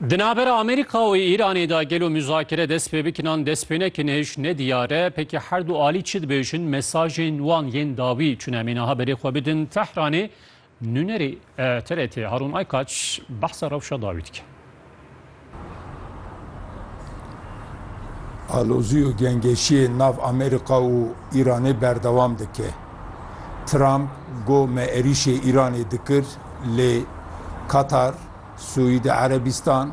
Di navbera Amerîka û Îranê de gelo muzakere dest pê bikin an dest pê nekin hêj ne diyar e. Pekî her du alî çi dibêjin, mesajên wan yên dawî çûne em ê niha berê xwe bidin Tehranê. Nûnerê TRT Harûn Aykaç behsa rewşa dawî dike. Alozî û gengeşiyê nav Amerîka û Îranê berdewam dike. Trump got me êrîşê Îranê dikir lê Katar, Sûîdî Erebîstan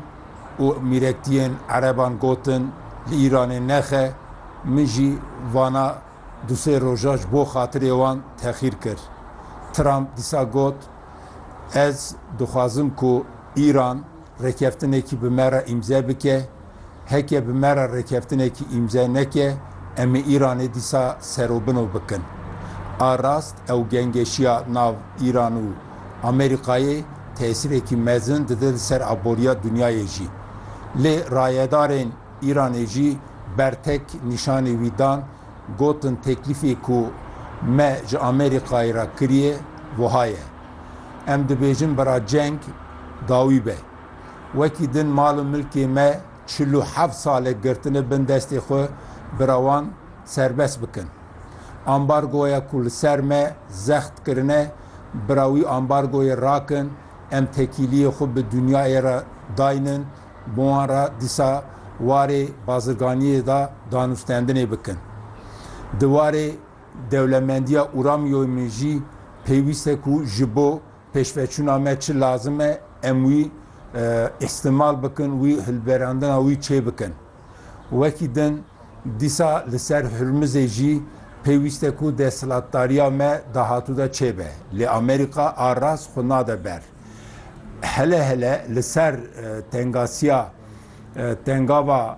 û mîrektiyên Ereban gotin li Îranê nexe, min jî vana du sê roja ji bo xatirê wan texîr kir. Trump dîsa got, Ez dixwazim ku Îran, Rêkeftinekî bi me re îmze bike. Heke bi me re rêkeftinekî îmze neke, em ê Îranê dîsa serobino bikin. A rast ew gengeşiya nav Îran û Amerîkayê tesîrekî mezin dide li ser aboriya dinyayê jî. Lê rayedarên Îranê jî bertek nîşanî wî dan, gotin teklîfê ku me ji Amerîkayê re kiriye wiha ye. Em dibêjin bira ceng dawî be. Wekî din mal û milkê me çil û heft sal e girtine bin destê xwe bira wan serbest bikin. Ambargoya ku li ser me zext kirine bira wî ambargoyê rakin em tekîliyê xwe bi dinyayê re daynin bi wan re dîsa warê bazirganiyê de danûstendinê bikin. Di warê Dewlemendiya Uramyoyê min jî pêwîst e ku ji bo pêşveçûna me çi lazim e em wî îstimal bikin, wî hilberandina wî çêbikin. Wekî din dîsa li ser Hurmizê jî pêwîst e ku desthilatdariya me dahatû de çêbe. Lê Amerîka a rast xwe nade ber. Hele hele li ser tengasiya tengava.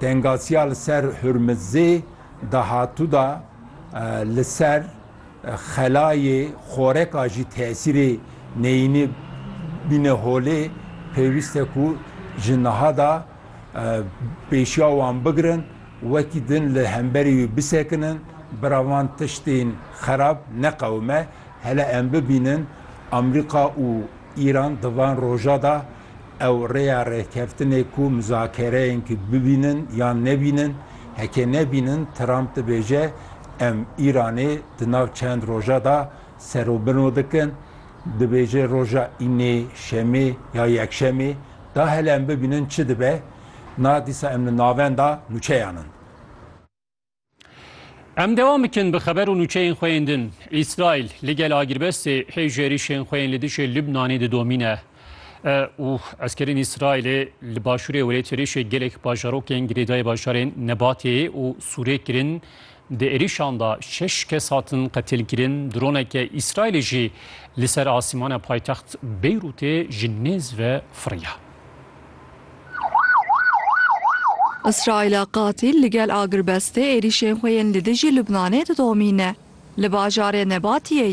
Tengasiya li ser Hurmizê dahatû de li ser xelayê xoreka jî tesîrê neyînî bîne holê, pêwîst e ku ji niha de pêşiya wan bigirin, wekî din li hemberî wî bisekinin, bira van tiştên xerab neqewime. Hele em bibînin Amerîka û Îran di van roja de Ew rêya rêkeftinê ku mizakereyên ki bibînin yan nebînin, heke nebînin Trump dibêje em Îranê di nav çend roja da serobino dikin, dibêje roja înê, şemê ya yekşemê da hele em bibînin çi dibe, na dîsa em li navenda nûçeyan in. Em dewam bikin bi xeber û nûçeyên xwe yên din. Îsraîl li gel agirbestê hêj êrîşên xwe yên li dijî Lubnanê didomîne û eskerên Îsraîlê li başûrê Wêlêt êrîşê gelek bajarokên girêdayî bajarên Nebatê û Sûrê kirin. Di êrîşan de şeş kes hatin qetilkirin. Droneke Îsraîlê jî li ser asîmana paytext Beyrûtê ji nêz ve firiya. Îsraîla qatîl li gel agirbestê êrîşên xwe yên li dijî Lubnanê didomîne. Li bajarê Nebatiyê